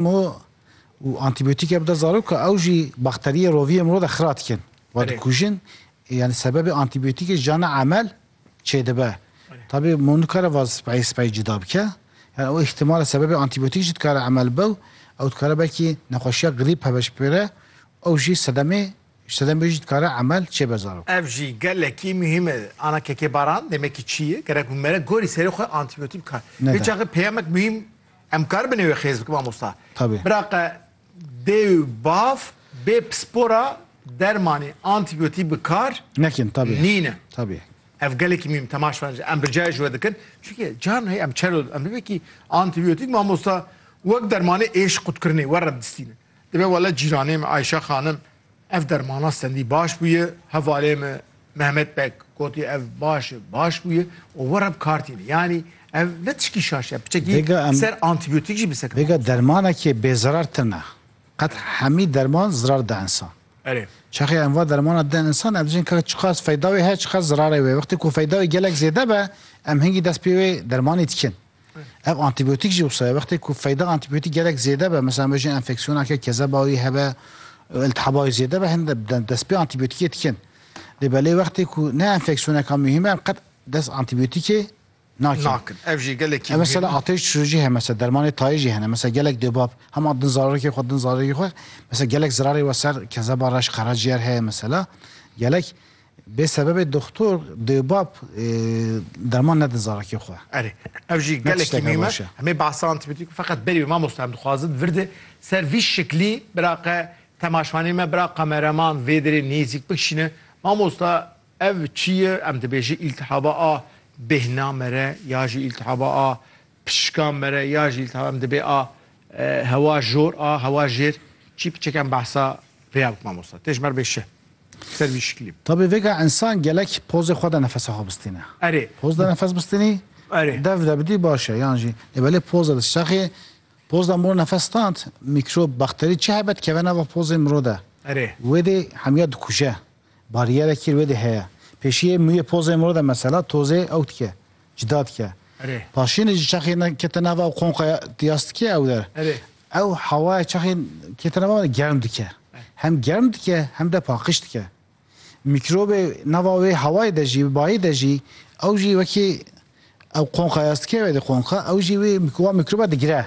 Mo û antîbiyotîke bide zaroka ew jî bakteriyê roviyê miro de xira dikin. Wa dikujin. Yanî sebebê antîbiyotîkê jiyana emel çêdibe. Tabî mo nikare va spayê spayê cuda bike. Yani o îhtimal e sebebê antîbiyotîk jî dikare emel bibe û ew dikare belkî nexweşiya grîp heveş bigire û ew jî sedemê ji sedemê wê jî dikare emel çêbe zarok. Ev jî gelekî muhîm e. Ana kekê baran demekî çî ye. Gerek bi me re gorî serê xwe antîbiyotîk bikar. Neda. Vê çaxê peyamek muhîm. Em karibin ew ê xêz bikin mamosta. Tevî. Biraqe dê û bav bê pispora dermanê antîbiyotîk bi kar Nekin tevî. nîne. Tevî. Ev gelekî mîm temaş ben em bi cayê ji we dikin. Çunke caran hey em çero em bibekî antîbiyotîk mamosta wek dermanê êş qutkirinê we re distînin. Dibe wele cîranê me Ayşe xanim Ev dermana sendî baş bûye. Hevalê me Mehmet Beg gotî ev baş e, baş bûye û were bi kar tîne. Yanî ev ne tişkî şaş e, piçekî Vêga em- ser antîbiyotik jî bi sekina. Vêga dermanekê bêzirar tune. Qet hemî derman zirar da insan. Erê. Çaxê em va dermana din insan em dibêjin ka çiqas feyda wê heye çiqas zirarê wê. Wextê ku feyda wê gelek zêde be em hingî dest pê wê dermanê dikin. Ev antîbiyotîk jî wisa ye. Wextê ku feyda antîbiyotîk gelek zêde be, mesela me jî enfeksiyoneke kezeba wî hebe, iltihaba wî zêde be, hin dest pê antîbiyotîkê dikin. Lê belê wextê ku ne enfeksiyoneka muhîm e, em qet dest antîbiyotîkê nakin. Nakin. Ev jî gelekî muhîm e. Mesela atêş düşirû jî hene, mesela dermanê tayê jî hene. Mesela gelek dubab hema din zarokê xwe, din zarokê xwe. Mesela gelek zirarê were ser kezeba reş, qeraciyêr heye mesela. Gelek. Bê sebebê doxtor, dêwbab derman nedin zarakê xwe. Erê, ev jî gelekî mîm e. Em ê behsa antîbîotîk feqet berî wê mamosta em dixwazin vir di ser vî şiklî biraqe temaşvanê me bira kamereman vê derê nêzîk bikişîne. Mamosta ev çi ye? Em dibêjin îltihaba a bêhnamere ya jî îltihaba a Pişikan mere ya jî lîta em dibê a hewa jor a hewa jêr çî piçek em behsa vê ya bikin mamosta. Tê ji mer bê şih. Ser vî şiklî. Tabî vêga însan gelek pozê xwe de nefesa xwe bistîne. Erê. Poz de nefes bistînî Erê. dev de bidî baş e yan jî lê belê poz de dişaxî poz de mirov nefes stand mîkrob, bakterî çi hebe dikeve nava pozê mirov de. Erê. Wê dê hemiya dikuje. Bariyere kîr wê dê heye. Pêşiyê mûyê pozê miro de mesela tozê ew dike, cida dike. Paşiyê ji çaxê kete nava ew qonqaya diyas dike ew der. Ew hawaya çaxê kete nava were germ dike. Hem germ dike hem de paqiş dike. Mîkrobê nava wê hawayê de jî, bayê de jî ew jî wekî ew qonqayas dike wê dê qonqa ew jî wê wan mîkroba digire.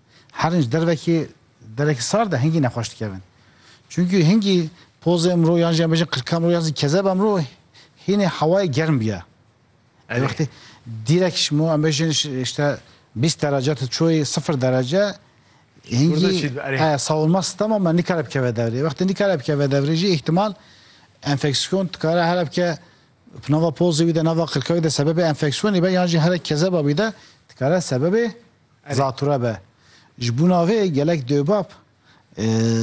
Herîn ji dervekê derekî sar de hingî nexweş dikevin. Çunkî hingî pozê imro yan jî em bêjin qirka imro yan jî kezeba imro hînê hewayê germ bîya. Ê wextê dîrek ji mo em bêjin işte bîst derece tu çûyî sifir derece hingî sawirma sistema me nikare bikeve devrê. Wextê nikare bikeve devrê jî îhtimal enfeksiyon dikare here bike nava pozê wî de nava qirka wî de sebebê enfeksiyonê be yan jî here kezeba wî de dikare sebebê Zatûre be. Ji bûna vê gelek dewbab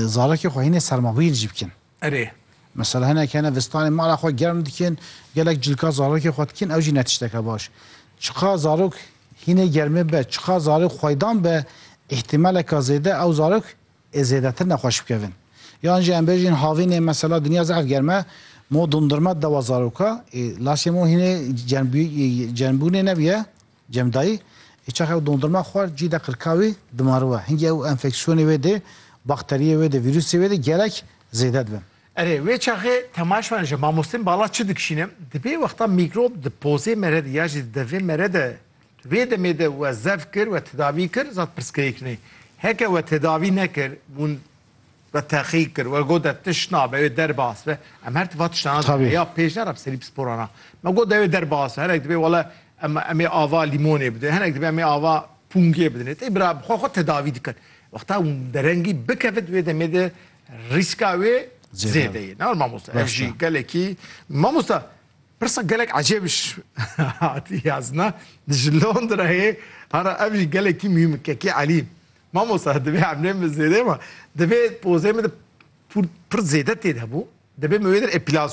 zarekê xwe hînê sermabîr jî bikin. Erê. Mesela hinek hene vistanê mala xwe germ dikin, gelek cilka zarekê xwe dikin ew jî ne tişteke baş. Çiqas zarok hînê germê be, çiqas zarok xweydan be îhtîmaleke zêde ew zarok ê zêdetir nexweş bikevin. Yan jî em bêjin havînê mesela dinya zehf germ e mo dondurma dewa zaroka ê lasê mo hînê germbûyî germbûnê nebiye Cem dayî, Ê çax ew dondurma xwar cî de qirka wî dimariwe. Hingî ew enfeksiyonê wê dê, bakteriyê wê dê, vîrusê wê dê gelek zêde dibe. Erê, wê çaxê temaş me ji mamostên bala çi dikişîne? Di vê wexta mîkrob di pozê me re de ya jî di devê me re de wê demê de we zef kir, we tedavî kir, zad pirsgirêk ne. Heke we tedavî nekir, hûn We teqî kir, we got de tişt nabe, wê derbas be. Em her tifa tiştana dibin. Tabî. Heya pêş ne re bi serî pisporan a. Me got de wê derbas be. Hinek dibê wele em em ê ava lîmonê bidin, hinek dibê em ê ava pûngê bidin. Ê tê bira bi xwe xwe tedavî dikin. Wexta derengî bikevit wê demê de rîska wê zêde ye. Ne were mamosta. Ev jî gelekî Mamosta pirsa gelek ecêb hatiye ez na. Ji Londrayê hara ev jî gelekî muhîm e. Kekî Elî Mamosta divê emlên min zêde ma divê pozê min de pir zêde têde bû, divê min wê der epilasyon